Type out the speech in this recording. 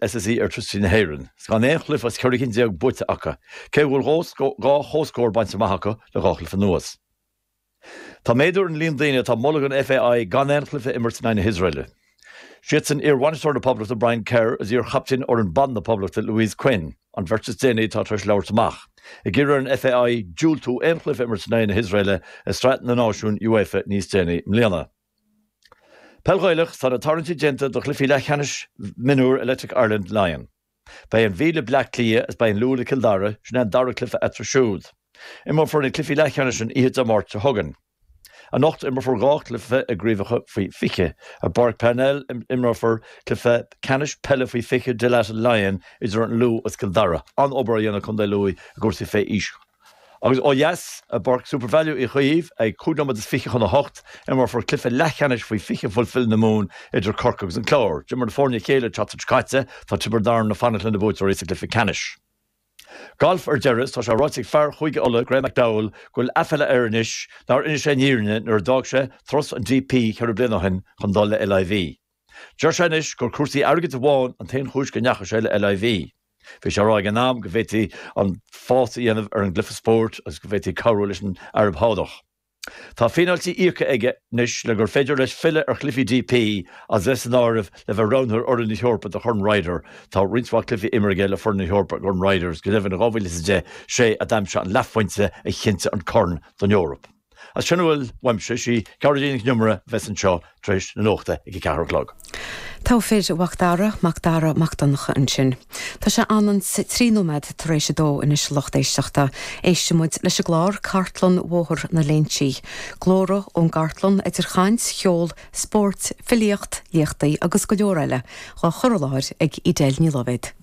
SSE Airtricity na hÉireann, 's gan aon chluife as ceithre cinn déag buaite acu, cé go bhfuil dhá chomhscór bainte amach acu le dhá chluife anuas. Tá méadú ar an líon daoine atá ag moladh don FAI gan aon chluife a imirt in aghaidh na hIosraeile. Siadsan iar-bhainisteoir na Poblachta Brian Kerr is iar-chaptaen fhoireann ban na Poblachta Louise Quinn, an bheirt is déanaí atá tar eis labhairt amach, ag iarraidh ar an FAI diúltú aon chluife a imirt in aghaidh na hIosraeile i Sraith na Náisiún UEFA níos déanaí i mbliana. Peil Ghaelach Tá na tarraingtí déanta do chluichí leathcheannais mionúr Electric Ireland Laighean. Beidh an Mhí le Bleá Cliath is beidh an Lú le Cill Dara, sin é an dara cluiche eatarthu siúd. Imreofar na cluichí leathcheannais an oíche Dé Máirt seo chugainn. Anocht imreofar dhá chluiche i gCraobhacha Faoi 20. I bPáirc Parnell imreofar cluiche ceannais peile Faoi 20 Dalata Laighean idir an Lú is Cill Dara, an-obair á dhéanamh ag Contae Lú i gcúrsaí faoi aois. Agus ó dheas, i bPáirc Supervalu Uí Chaoimh, ag cúig nóiméad is fiche chun a hocht, imreofar cluiche leathcheannais faoi fiche Fulfil na Mumhan idir Corcaigh agus an Clár. D'imir na foirne a chéile an tseachtain seo caite, tá Tiobraid Arann ag fanacht leis na buaiteoirí sa gcluiche ceannais. Galf ar deireadh, is tá sé ráite ag fear Chúige Uladh, Graeme McDowell, go bhfuil aiféala air anois nár inis sé an fhírinne nuair a d'fhág sé turas an DP ceithre bliana ó shin chun dul le LIV. Deir sé anois gur cúrsaí airgid amháin an t-aon chúis go ndeachaigh sé le LIV. Bhí sé á rá ag an am go bhféadfaí an fás a dhéanamh ar an gcluiche spóirt agus go bhféadfaí cabhrú leis an Araib Shádach. Tá fíneáiltí íoctha aige anois le gur féidir leis filleadh ar chluichí DP agus é san áireamh le bheith roghnaithe ar fhoireann na hEorpa do Chorn Ryder, tá roinnt mhaith cluichí imeartha aige le foireann na hEorpa i gCorn Ryder agus go deimhin in 2010 sé a d'aimsigh an leathphointe a chinntigh an Corn don Eoraip. Agus sin a bhfuil uaimse, sí Gearóidín Nic an Iomaire a bheas anseo tar éis na nuachta ag a ceathair a chlog. Togha fir a Mhac Dara, Mac Dara Mac Donncha, ansin. Tá sé ionann's trí nóiméad tar éis a dó anois a lucht éisteachta. Éistfidh muid leis an gclár Cartlann Bhóthar na Léinsí. Glórtha ón gcartlann, idir chaint, cheol, spóirt, filíocht, léachtaí agus go leor eile, dhá chur i láthair ag Edel Ní Loibhéad.